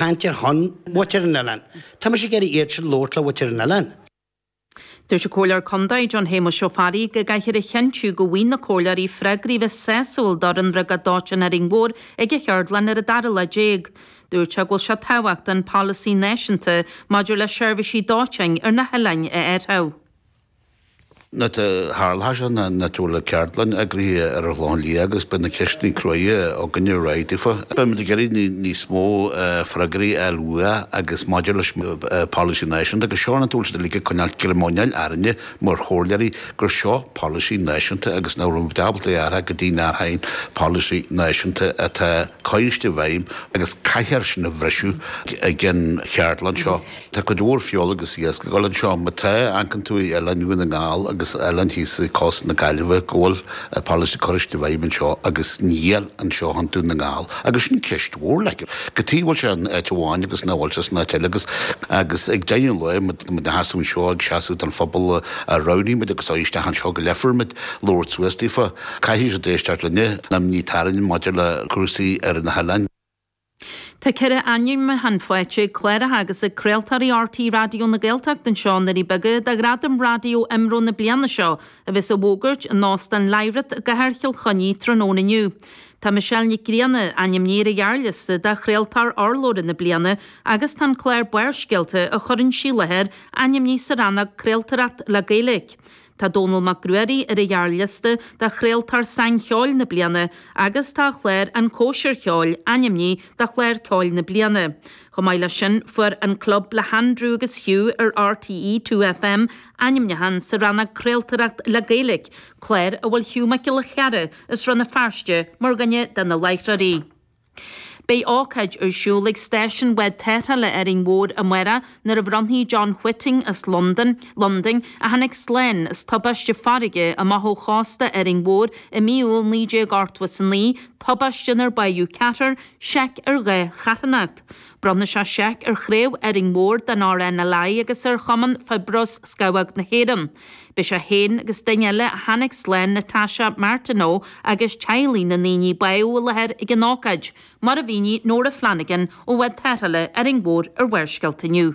Tá mise ag iarraidh labhairt le muintir an oileáin. Dúirt an Comhairleoir Contae, John Shéamais Ó Fearraigh, go gcaithfear a chinntiú go bhfaigheann na comhairleoirí freagraí a bheas sásúil fán bhriogáid dóiteáin in Árainn Mhór ag an cheardlann ar an dara lá déag. Dúirt sé go bhfuil sé tábhachtach an polasaí náisiúnta maidir le seirbhísí dóiteáin ar na hoileáin a athrú. Nuair a tharla seo, anois tá ceardlann eagraithe ar an Ghleann Liath agus beidh na ceisteannaí cruaidhe againne réidh daofa. Beidh muid ag iarraidh níos mó freagraí a fháil uathu agus maidir leis an Polasaí Náisiúnta agus seo an t-am uilig ag coinneáil ag cur ina luí orainne mar chomhairleoirí gur seo polasaí náisiúnta agus nach raibh ábalta é a athrú, go dtí nach rabh aon polasaí náisiúnta atá curtha i bhfeidhm agus caithfear sin a bhriseadh ag an cheardlann seo. Tá cuid mhór fírinne agus bréaga ag dul anseo. Má amharcann tú ar oileáin Dhún na nGall agus oileáin thíos i gcósta na Gaillimhe go bhfuil polasaí curtha i bhfeidhm anseo agus níl anseo i gContae Dhún na nGall. Agus sin ceist mhór, like. Cad chuige a bhfuil sé in áit amháin agus nach bhfuil sé san áit eile agus agus ag deireadh an lae tá muid inár seasamh anseo ag seasamh don phobal a roghnaigh muid agus a thogh isteach anseo go labharfaidh muid labhairt suas daofa. Caithfidh siad éisteacht linne. an am atá romhainn maidir le cúrsaí ar na hoileáin. Tá ceithre ainmniúchán faighte ag cláracha agus ag craoltóirí RTÉ Raidió na Gaeltachta anseo sna Doirí Beaga do Ghradaim Raidió IMRO na bliana seo a bheas á bhfógairt in Óstán Lyrath i gcathair Chill Chainnigh tráthnóna inniu. Tá Michelle Nic Grianna ainmnithe ar an ghearrliosta do Chraoltóir Urlabhra na Bliana agus tá an clár Barrscéalta a chuireann sí i láthair ainmnithe sa rannóg Craoltóireacht le Gaeilge. Tá Dónall Mac Ruairí ar an ghearrliosta do Chraoltóir Sainceoil na Bliana agus tá a chlár An Chóisir Cheoil ainmnithe do Chlár Ceoil na Bliana. Chomh maith leis sin, fuair An Club le hAndrew agus Hugh ar RTÉ Two FM ainmniúchán sa rannóg 'Craoltóireacht le Gaeilge', clár a bhfuil Hugh Mac Giolla Chearra as Rann na Feirste mar dhuine de na láithreoirí. Beidh ócáid ar siúl ag Stáisiún Bhád Tarrthála Árainn Mhór amárach nuair a bhronnfaidh John Whiting as Londain, Londain, a tháinig slán as tubáiste farraige amach ó chósta Árainn Mhór i mí Iúil 1989, tubáiste inar bádh ceathrar, seic ar dhá charthanacht. Bronnfaidh sé seic ar Chraobh Árainn Mhór den RNLI agus ar Chumann Fiobróis Scamhóg na hÉireann. Beidh sé féin agus duine eile a tháinig slán, Natasha Martineau, agus teaghlaigh na ndaoine a bádh i láthair ag an ócáid, mar a mhínigh Nóra Flanagan ó Bhád Tarrthála Árainn Mhór ar Bharrscéalta inniu.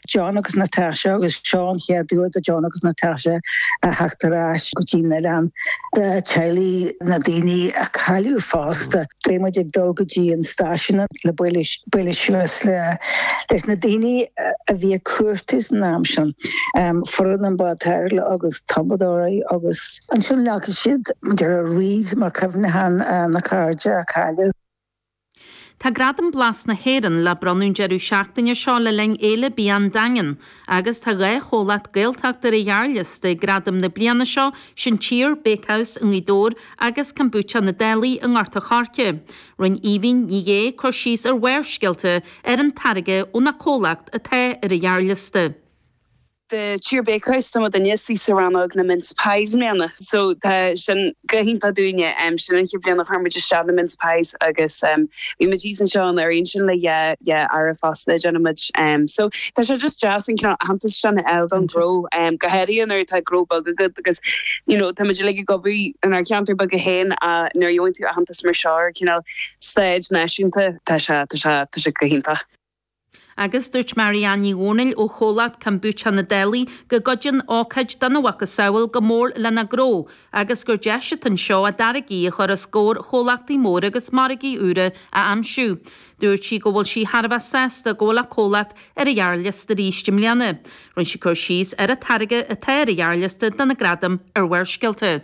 John agus Natasha agus seo an chéad uair do John agus Natasha a theacht ar ais go dtí'n oileán. Tá teaghlaigh na daoine a cailleadh fosta. Beidh muid ag dul go dtí an stáisiún le bualadh suas leis na daoine a bhí ag cuartú san am sin, foireann an bháid tarrthála agus tumadóirí agus ansin leagfaidh siad na wreaths mar chuimhneachán na cairde a cailleadh. Tá Gradam Blas na hÉireann le bronnadh an deireadh seachtaine seo le linn Fhéile Bia an Daingin agus tá dhá chomhlacht Gaeltachta ar an ghearrliosta, Gradam na bliana seo, sin Tír Bakehouse i nGaoth Dobhair agus Kombucha na Dálaigh i nGort an Choirce. Rinne Aoibhín Ní Dheagha cur síos ar Bharrscéalta ar an táirge óna comhlacht atá ar an ghearrliosta. de Tír Bakehouse tá muid ins an rannóg na Mince Pies i mbliana so tá sin go hiontach dúinne. Sin an chéad bhliain a chuir muid isteach na Mince Pies agus bhí muid thíos anseo anuraidh ansin le dhá dhá earra fosta a dhéanann muid so tá sé just deas an cineál aitheantas sin a fháil don ghnó go háirithe nuair atá gnó beag agat because you know tá muid uilig ag obair inár gceantar beaga féin ach nuair a gheibheann tú aitheantas mar seo ar cineál stage náisiúnta tá sé tá sé tá sé go hiontach. Agus dúirt Marianne Ní Dhomhnaill ó chomhlacht Kombucha Na Dálaigh go gcuidíonn ócáid dona mhacasamhail go mór lena ngnó agus gur deis atá anseo a dtáirgí a chur os comhair chomhlachtaí móra agus margaí úra a aimsiú. Dúirt sí go bhfuil sí thar a bheith sásta go bhfuil a comhlacht ar an ghearrliosta arís i mbliana. Rinne sí cur síos ar an táirge atá ar an ghearrliosta do na gradaim ar Bharrscéalta.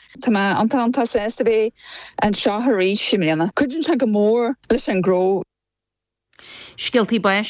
Tá mé iontach iontach sásta a bheith anseo arís i mbliana. Cuidíonn sé go mór leis an ngnó. Scéaltaí Báis.